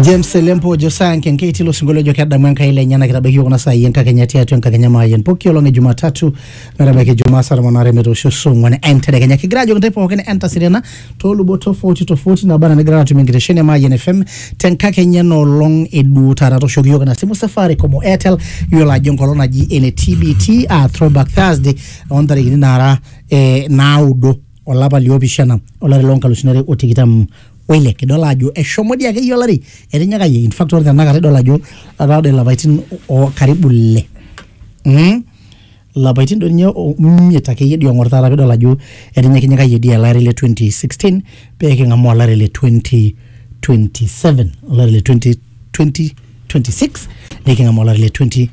James Selempo Josaya Nkenkei tilo sinkolio ojo kedamu Enkai lenyena kitabaiki kuna saai enkakenya tiatua enkakenya maayian pooki olong e Jumatatu metabaiki Jumaa saa tomon aare metoosho saa ong'wan entedekenya kigira ajoki intae pookin entasirena toolubot tofauti tofauti naba anaa nigira atum enkitesheni e Maayian FM tenkakenya ena olong e duo taata tooshoki iyiook ina simu Safaricom o Airtel iyiolo ajo enkolong naji ene TBT aa Throwback Thursday ontarikini naara eh, naudo olapa liopishana olari loonkalusuni are o tikitam oile kidol ajo eshomo dii akeyie olari etinyikayie in fact ore tenakata idol ajo etaa doi ilapaitin o karibu ile mm? lapaitin doi ninye o- imiet akeyie dii ong'or taata pidol ajo etinyikinyikayie dii ele ari le 2016 pee king'amu olari le 2027 olari le 2020 26 niking'amu olari le 20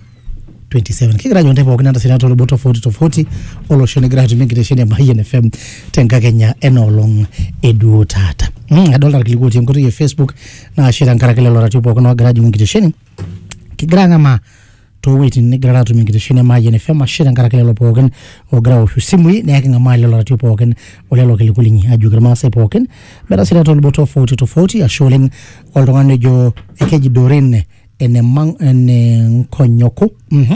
27 kigira ajo ntae pookin entasita too lubot tofauti tofauti olosho nigira atumie enkitesheni e Mayian FM tenkakenya ena olong eduo taata mm, adolta irkiliku otii enkoitoi e Facebook naashe tenkaraki lelo ratio pookin oogira ajing'u enkitesheni kigira ang'amaa toowueitin nigira atumie enkitesheni e Mayian FM ashe tenkaraki lelo pookin oogira aoshu simui neeku king'amaa lelo ratio pookin olelo kiliku linyi ajoki irmaasai pookin metasira too lubot tofauti tofauti ashe oleng oltung'ani ojo ekeji Doreen ene mang- ene nkonyoko mhm.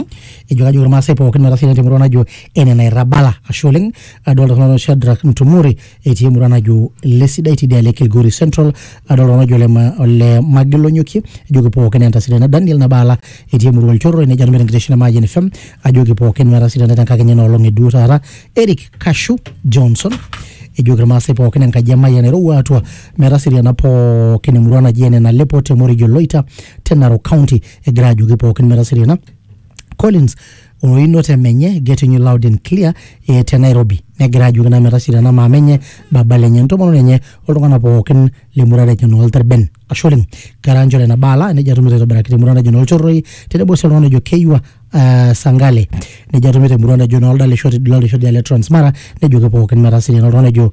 ejo kajo irmaasai pookin metaa sii temurua najo ene nairrabala ashe oleng adolta iltung'anak ojo Shadrack Ntumore etii emurua najo lesidai tidialo e Kilgori Central adolta oltung'ani ojo ole ma- ole Magilonyokie ejoki pookin entasidana Daniel Nabaala etii emurua Olchorroi nejo atumito enkitesheni e Mayian FM ajoki pookin metasidana tenkakenya ena olong eduo taata Eric Kashu Johnson ejoki irmaasai pookin enkaji e Mayian eirowua atua Metaseriana pookin emurua naji ene Nalepo te Morijo Loita te Narok County egira ajoki pookin metaseriana. Collins oinoto emenye getting you loud and clear eh, te Nairobi negira ajoki naa metaseriana maama enye baba lenye entomononi enye oltung'anak pookin lemurua naji noo Lterben. Ashe oleng kera njore ena baala nejia atumito aitobiraki temurua naji noo Lchorroi tenebo sii oltung'ani ojo Keiwa ah, Sangale nejia atumito emurua naji noo Ldalishoti Ldalishoti le Transmara nejoki pookin metaseriana oltung'ani ojo